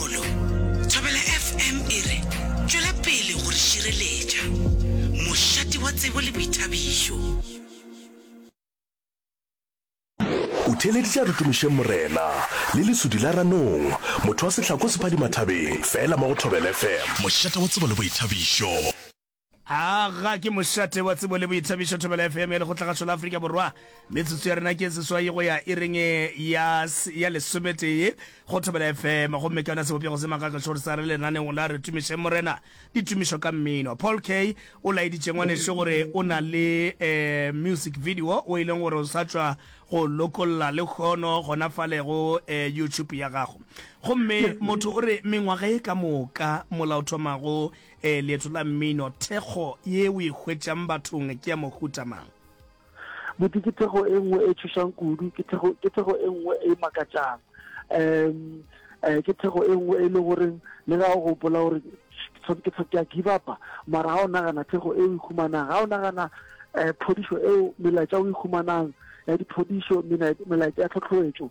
Kgolo. Thobela FM e re, Tšwela pele go re šireletša. Mošate wa tsebo le boithabišo. O theeleditše a re tumišeng Morena le lesudi la ranong, motho wa sehlako sephadimathabeng, fela mo go Thobela FM. Mošate wa tsebo le boithabišo. Aga ke mošate wa tsebo le boithabišo Thobela FM ya Lekgotlagašo la Afrika Borwa. Metsotso ya rena ke seswai go ya ireng ya, ya lesometee go Thobela FM. Gomme ka yona sebopego se makakašo gore sa re lenaneong la Re Tumišeng Morena, ditumišo ka mmino. Paul K. o laeditše ngwanešu gore o na le eh, music video o e leng gore o sa tšwa go lokolla le kgono gona fale go eh, YouTube ya gago. Gomme motho o re mengwaga e ka moka molaothomago Ee, leeto la mmino. Thekgo ye o e hwetšang bathong ke ya mohuta mang? Buti, ke thekgo e nngwe e tšhošang kudu, ke thekgo, ke thekgo e nngwe e makatšang. Um, um, ke thekgo e nngwe e le goreng le ga o gopola gore ke tshwa ke a give upa, mara ga o nagana thekgo e o e humanang, ga o nagana um phodišo eo melaetša o e humanang ya diphodišo, melaetša ya tlhotlhoetšo.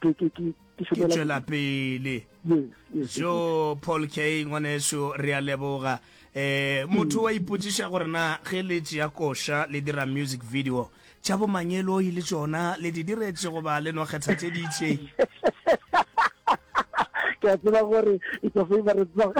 ke ke ke ke šomela tšwela pele jo paul k ngwaneso re a leboga um motho mm. wa ipotsiša gore na ge le tšea koša le dira music video tša bomangeloi le tsona le di diretse goba le no kgetha tše di itseng ke a tseba gore it's a favorite song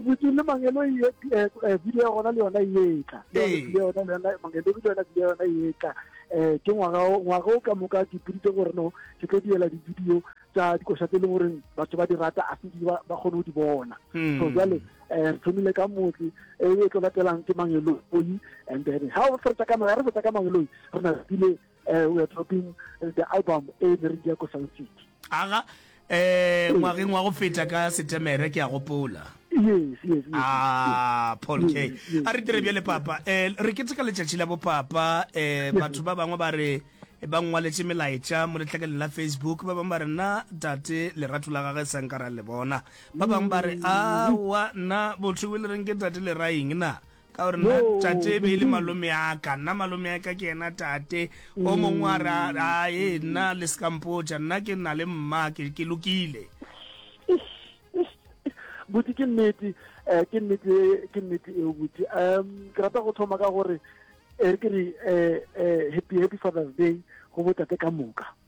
botse le mangelo e eh, eh, video ya gona le yona e etla video ya gona le yona mangelo le yona video ya gona e etla um ke ngwaga ngwaga o ka moka ke puditse gore no ke tlo diela di-video tsa dikoša tse e leng goreng batho ba di rata a sedi ba kgone go di bona hmm. so jale um re thomile ka motse e, e tlo latelang ke mangeloi and then ga o fetsa ka ga re fetsa ka mangeloi re na tsile um we are dropping the album e ne re dia ko sound city aga Ee, ngwageng wa go feta ka Setemere, ke a gopola. Yes, yes, yes. Ah, Paul K. Yes, yes, A re dire yes, bjale, yes. Papa. Eh, re keteka letšatši la bopapa. Eh, batho ba bangwe ba re ba ngwaletše melaetša mo letlakaleng la Facebook. Ba bangwe ba re, nna tate lerato la gage sa nka ra le bona. Ba bangwe ba re, aowa, nna botho bo le reng ke tate leraing na? Ka gore nna tate e be e le malome a ka, nna malome a ka ke yena tate. O mongwe a re, a, e, nna le se ka mpotša, nna ke na le mma, ke, ke lokile. buti ke nnete um ke nnete ke nnete eo buti um ke rata go thoma ka gore e re ke re um happy happy father's day go botate ka moka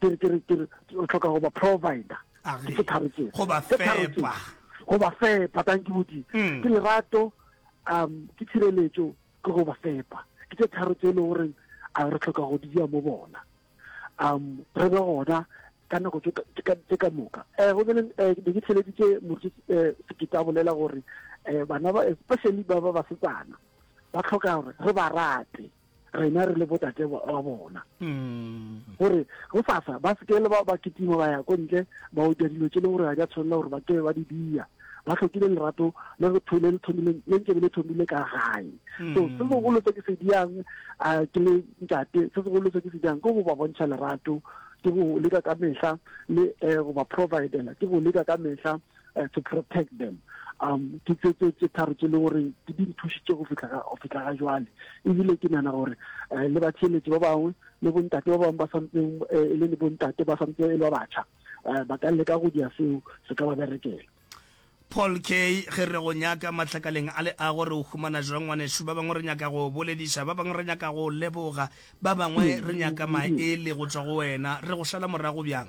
ke re ke re ke re o tlhoka go ba provider Ari. ke tharo tse Go ba Tse tharo tse. fepa. go ba fepa thank you bodi Mm. ke lerato um ke tshireletso ke go ba fepa ke tse tharo tse e le goreng a re tlhoka go di dira mo bona um re be gona ka nako tse ka- tse ka- tse ka moka um go bene um ne ke theleditse motse um sekete a bolela gore um bana ba especially ba ba basetsana ba tlhoka gore re ba rate rena re le botate ba bona mm. gore go sasa ba sekele ba ba kitima ba ya ko ntle ba otja dilo tse e leng gore ga di a tshwanela gore ba kebe ba di dia ba tlhokile lerato le go thole le thomile le ntse le thomile ka gae mm. so se segolo se ke se diang a ke le ntate se segolo se ke se diang ke go ba bontšha lerato ke go leka ka mehla le eh, go ba providela ke go leka ka mehla uh, to protect them um ke tse tse tse tharo tse le gore di di nthusitse go fitla ga go fitla ga jwale ebile ke nana gore uh, le ba tsheletsi ba bangwe le bontate ba bangwe ba santseng uh, e le le bontate ba santse e le ba batjha uh, ba ka leka go dira seo se ka ba berekela paul k ge re go nyaka mahlakaleng a le a gore o humana jwa ngwanešu ba bangwe re nyaka go bolediša ba bangwe re nyaka go leboga ba bangwe re nyaka maele go tswa go wena re go šala morago bjang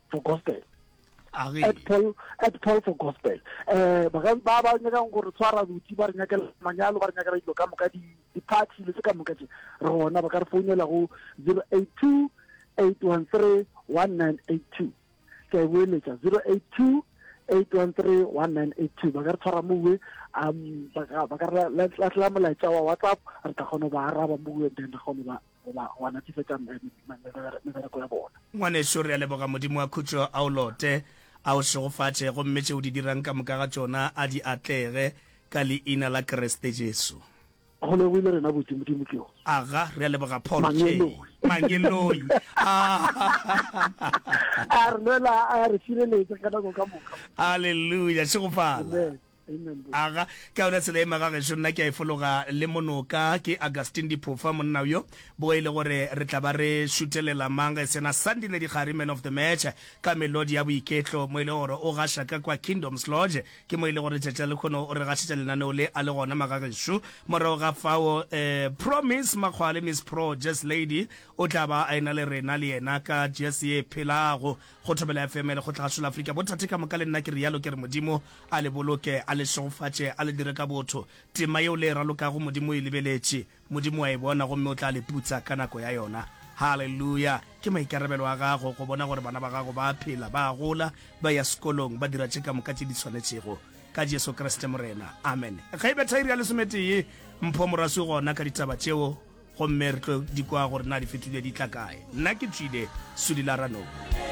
for gospel at Paul at Paul for gospel eh ba ka ba ba nyaka go re tshwara botsi ba re nyaka manyalo ba re nyaka dilo ka moka di di parts le se ka moka tse re gona ba ka re founela go 082 813 1982 ke a boeletsa 082 813 1982 ba ka re tshwara mowe um ba ka re lahlela molaetsa wa whatsapp re tla kgona go ba araba mowe then re kgone ba goba wa natefetša mebereko ya bona. Ngwanešu, re a leboga Modimo wa khutšo a o lote, a o šegofatše, gomme tše o di dirang ka moka ga tšona a di atlege, ka Leina la Kriste Jesu. Go lebohile rena botse, Modimo ke o. Aga, re a leboga Paul K. Mangeloi. A re lwela, a re šireletša ka nako ka moka. Aleluya! Šegofala. Amen. Aga, ka yona tsela ye magagešo nna ke a e fologa le monoka, ke Augustine Diphofa monna bjo bo e le gore re tla ba re šuthelela mang ge e se yena Sandile Dikgari, man of the match, ka melodi ya boiketlo mo e le gore o gaša ka kwa Kingdoms Lodge. Ke mo e le gore letšatši la lekhono o re gašetša lenaneo le a le gona magagešo. Morago ga fao eh, Promise Makgwale, Miss Pro Jazz Lady, o tla ba a e-na le rena le yena ka jazz ye e phelago. Go thobela FM le go tla hlola Afrika bothate ka moka le nna ke realo ke re Modimo a le boloke a le šegofatše a le dire ka botho tema yeo le e ralokago Modimo o e lebeletše Modimo wa e bona gomme o tla le putsa ka nako ya yona Haleluya ke maikarabelo a gago go bona gore bana ba gago ba a phela ba a gola ba ya sekolong ba dira tše ka moka tše di swanetšego ka Jesu Kriste Morena Amen Ge e betha iri ya lesometee mpho moraswi gona ka ditaba tšeo gomme re tlo di kwa gore na di fetlile di tla kae nna ke tswile Sudi Laranong.